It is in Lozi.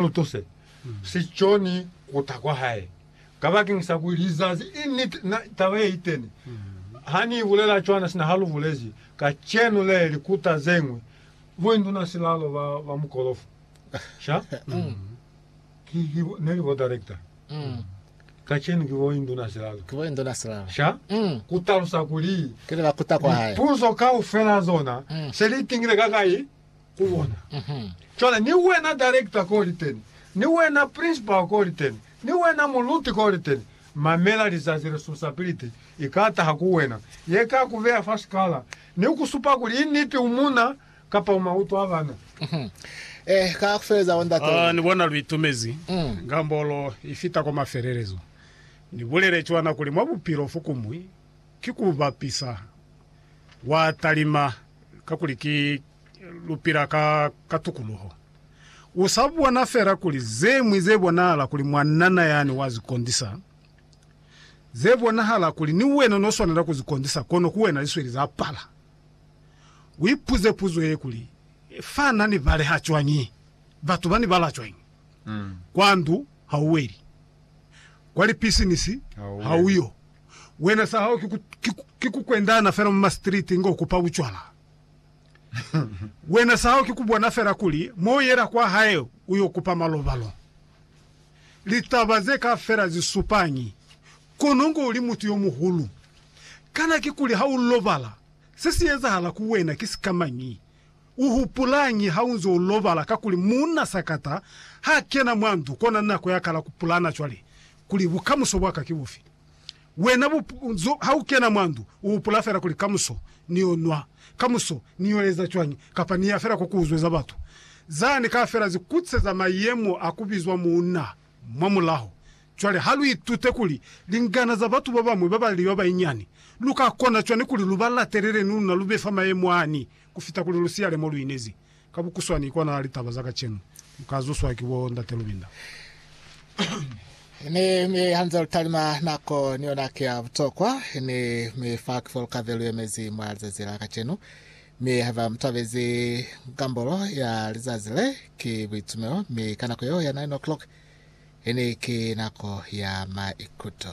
lutuse si coni kuta kwa hae kabakeng sa kuli lizazi i niti na taba ye iteni ha ni bulela cwana sina ha lu bulezi kacenu le li kuta zeñwi boinduna silalo ba ba mukolofo sha ki ki ne li bo director kacenu ki boinduna silalo ki boinduna silalo sha ku talusa kuli ke le ba kuta kwa hae puzo kaufela zona se li tingile ka kai ku bona. Cwale, ni wena director ko liteni, ni wena principal ko liteni, ni wena muluti ko liteni, mamela lizazi responsibility i ka taha ku wena, ye ka ku beya fa sikala, ni ku supa kuli i niti u muna, kapa u mautwa bana. Eh, ka ku feleza, bo ndate Ah, ni bona lu itumezi, ngambolo i fita kwa mafelelezo. Ni bulele cwana kuli mwa bupilo fokumwi ki ku bapisa, wa talima, kakuli ki, lu pila ka, ka tukuluho. U sa bona fela kuli ze ñwi ze bonahala kuli mwanana yani wa zi kondisa, ze bonahala kuli ni wena no swanela ku zi kondisa, kono ku wena li sweli za pala. U ipuze puzo ye kuli, Fa na ni baleha cwañi? Batu ba ni bala cwañi? Kwa ndu ha u weli. Kwa lipisinisi ha u yo. Wena sa hao ki ku, ki ku, ki ku kwendana fela mwa ma street ngo kupa bucwala. Wena sahao ki kubona fela kuli mo uyela kwahae uyo kupa malobalo. Litaba ze kaafela zisupañi kono ngo uli mutu yomuhulu? Kana kikuli ha u lobala se si ezahala ku wena ki sikamañi? U hupulañi ha unze u lobala? Kakuli muuna sakata ha kena mwa ndu kona nako ya kala kupulana cwale kuli bukamuso bwaka ki bufi. Wena buzo, ha u kena mwa ndu, u hupula fela kuli, Kamuso ni yo nwa, kamuso ni yo eza cwañi, kapa ni ya fela kwa ku uzweza batu? Za ni ka fela zi kutseza mayemo a ku bizwa muuna mwa mulaho. Cwale ha lu itute kuli lingana za batu ba bañwi ba ba li ba banyinyani, lu ka kona cwañi kuli lu ba latelele ni luna lu be fa mayemo ani ku fita kuli lu siyale mo lu inezi? Ka bukuswani, kona litaba za kacenu lu ka zuswa ki bo Ndate Lubinda. Mi, mi hanze lu talima, nako ni yona ki ya butokwa. Mi, mi fa ki fo lu ka be lu yemezi mwa lizazi la kacenu. Mi haiba mu tabezi ngambolo ya lizazi le, ki buitumelo, mi ka nako yeo ya nine o'clock, ini ki nako ya maikuto.